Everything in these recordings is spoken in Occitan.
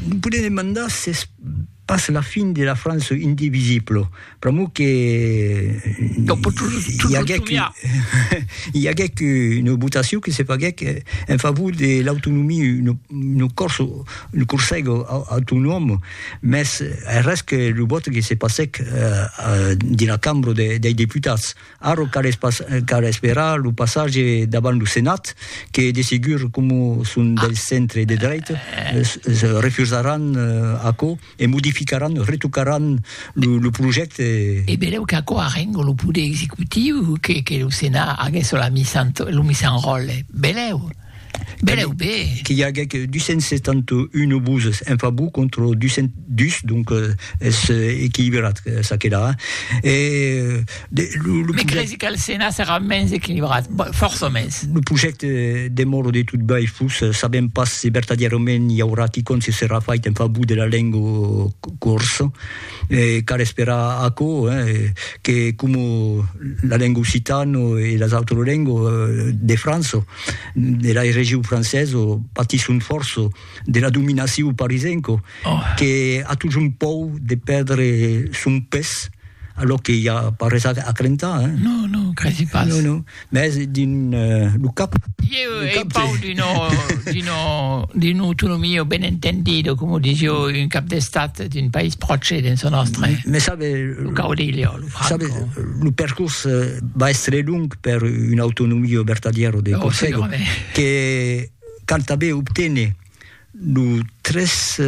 Me podem demandar s'es pas la fin de la France indivisible. Pr'amor que i aguec i aguec una votacion que se faguec en favor de l'autonomia, un cors un corsèg autonòm, mès arrés que lo vòte que se passèc dins la cambra dei deputats. Ara cal esperar lo passatge davant lo Senat que de segur coma son del centre de drech refusaràn aquò e modificaràn, retocaràn lo projècte. E belèu qu'aquò arrenga lo poder executiu que lo Senat aguèsse lo misan ròtle. Belèu! Bereu be! Qu'i aguec 271 obuses en favor contra 202, donc es equilibrat ça que la. E de lo, lo. Me cresi qu'al Senat serà mens equilibrat, fòrça mens. Lo projècte demòra de tot bèi fus, sabèm pas se vertadièrament i aurà quicòm se serà fait en favor de la lenga corsa. E cal esperar aquò, que coma la lenga occitana e las autras lengas de França, de la region francesa, patisson fòrça de la dominacion parisenca, que a totjorn paur de pèrdre son pes, alòr que i a pas res a crentar. Non, non, credi pas. Mès dins lo cap. Ieu ei pau d'una autonomia ben entendida, coma disio, un cap d'estat d'un país pròche dins lo nòstre. Mès sabe, lo caudillo, lo Franco. Sabe, lo percors va èstre long per una autonomia vertadièra de Còrsega, que canta ben obténer Lo tres,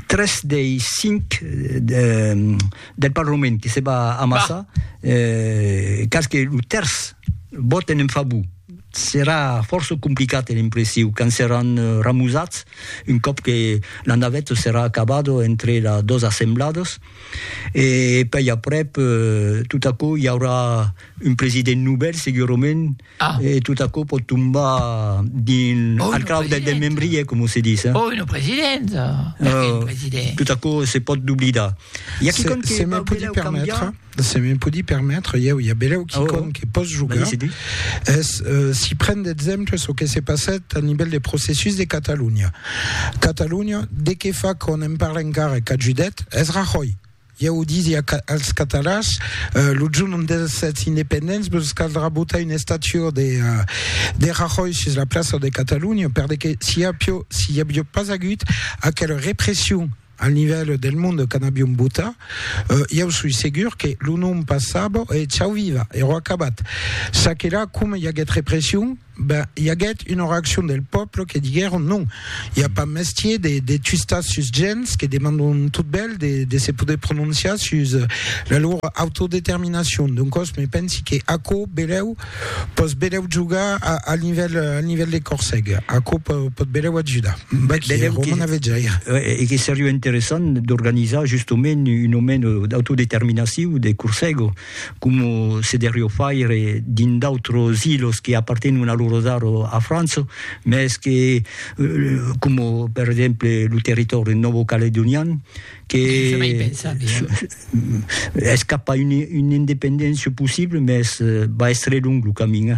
tres dei cinc del Parlament que se va amassar, cas que lo tèrç vòten en favor, serà fòrça complicat e l'impressiu qu'an seràn ramusats un còp que la naveta serà acabada entre las dos assembladas e pèi aprèp tot aquò i aurà un president novèl segurament, E tot aquò pòt tombar dins al clau del desmembrier, coma se ditz. Oi, lo president! Perqué lo president? Tot aquò se pòt doblidar. I a quicòm que vau belèu cambiar? Se me podi permetre, ieu, i a belèu quicòm que pòs jogar, es si pren d'exemple çò que se passèt a nivèl de processus de Catalonha. Catalonha, de qué fa qu'on en parle encara e qu'ajudet? Es Rajoy! Ieu disia als catalans, lo jorn dels sètz independents vos caldrà botar una estatua de Rajoy sus la plaça de Catalunya, perdeque si i aviá pas agut aquela repression al nivèl del monde quand aviom botat, ieu soi segur que lo nom passava e chau viva, ero acabat. Ça que la, coma i aguèt repression, Ben, i aguèt una reaccion del pòble que diguèron non, i a pas mestier de, de twistar sus gents que demandon tot bèl de, de se poder prononciar sus la lor autodeterminacion. Doncòs, me pensi que aquò belèu pòs belèu jogar a, al nivèl, al nivèl de Corseg. Aquò pò, pòt belèu ajudar. Be, belèu que, Roman Avejaire. E que seriá interessant d'organizar justement un moment d'autodeterminaciu de Corseg. coma se derrió faire dins d'autros ilos que apartenon a l'Orosar o a França, mès que, coma per exemple lo territòri nòvo-caledonian, que es cap a una independéncia possible, mès va èstre long lo camin.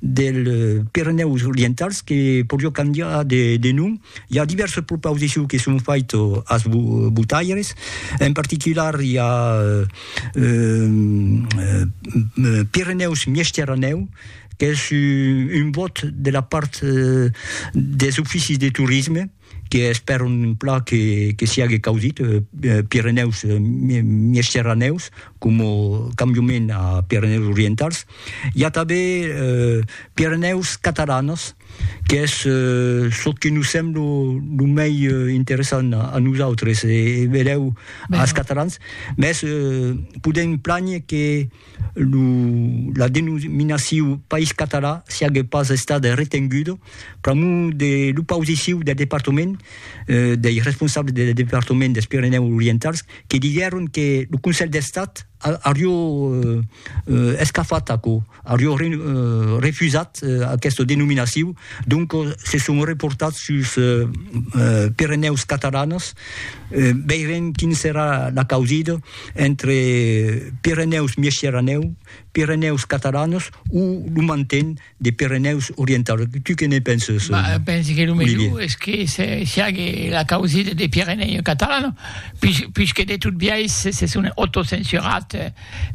dels Pirenèus Orientals que podió cambiar de nom. I a divèrses propausiciu que son faito as votaires, en particular i a Pirenèus Miesteranèu qu'es un vòt de la part des oficis de torisme, que espèron un plan que siague caudit, Pirenèus, Miègterranèus, coma cambiament a Pirenèus Orientals. I a tanben Pirenèus Catalanas, qu'es çò que nos sembla lo mei interessant a nosautres e benlèu als catalans, mès podèm plànher que lo, la denominaciu País Català siague pas estada retenguda pr'amor de l'opausiciu del departament, dei responsables del departament dels Pirenèus Orientals, que diguèron que lo Conselh d'Estat aurió escafat aquò, aurió refusat aquesta denominaciu, doncas se son reportats sus Pirenèus Catalanas, veirem quina serà la causida. entre Pirenèus Miesciranèu, Pirenèus Catalanos o lo manten de Pirenèus Orientaus? Tu que ne penses? Bah, je pense que lo melhor es que siague la causida de Pirenèus Catalanos, puis, puis que de tot biais se son autocensurat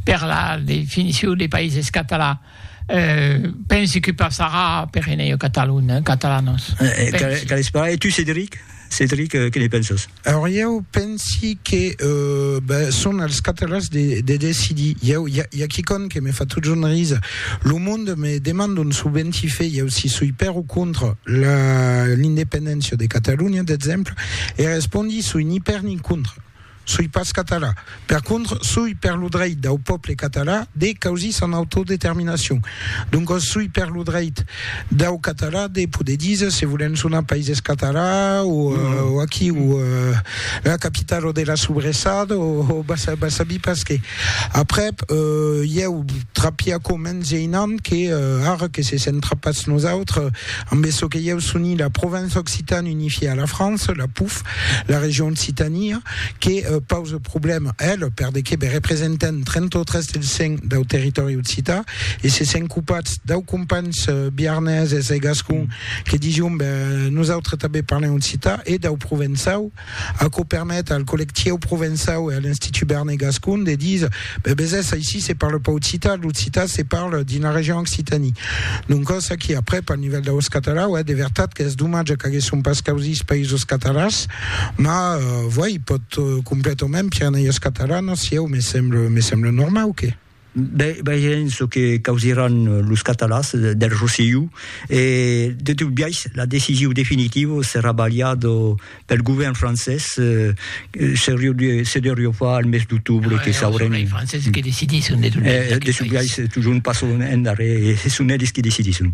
per la definicion de païses catalans. Pensi que passarà per enèu catalon, catalanos. Qu'a l'esparai, e tu Cedric? Cedric, que ne pensas? Aur ieu pensi que son als catalans de decidir. Ieu, i a quicòm que me fa totjorn risa, lo monde me demanda un subenti fe ieu si soi per o contra l'independéncia de Catalonha, d'exemple, e respondi soi ni per ni contra. Soi pas català. Per contra, soi per lo dreit dau pòble català de causir son autodeterminacion. Doncas soi per lo dreit dau català de poder díser se volèm sonar Païses Català o aquí o la capitala de la sobressada o va sabir pas qué. Aprèp, ieu trapia aquò mens geinant que ara que se sent trapat nosautres ambe çò que ieu soni la Provença Occitane unifiée à la France, la POUF, La region Occitania que pausa problèma, ela, per de que be representant 33 del 100 dau territòri occità e se sent copats dau companhs biarneses e gascon que dision be nosautres tanben parlem occità e dau provençau, aquò permet al collectieu provençau e a l'Institut Berner Gascon de díser Be besés, aicí se parle pas occitan, l'occitan se parle dins la region Occitanie. Doncòs aquí, aprèp, al nivèl d'aus catalans, uèi, de vertat qu'es domatge qu'aguèsson pas causís països catalans, ma, vuèi, pòt completament Pirenèios Catalanos, sieu, me semble, me semble normau que. Be, vegem çò que causiràn los catalans del Rosselló, e, de tot biais, la decision definitiva serà balhada pel govèrn francés se deurió far al mes d'octobre no, que saurem els franceses que decidisson de, eh, de sublais tujorn pas son en darrèr e son eles qui decidisson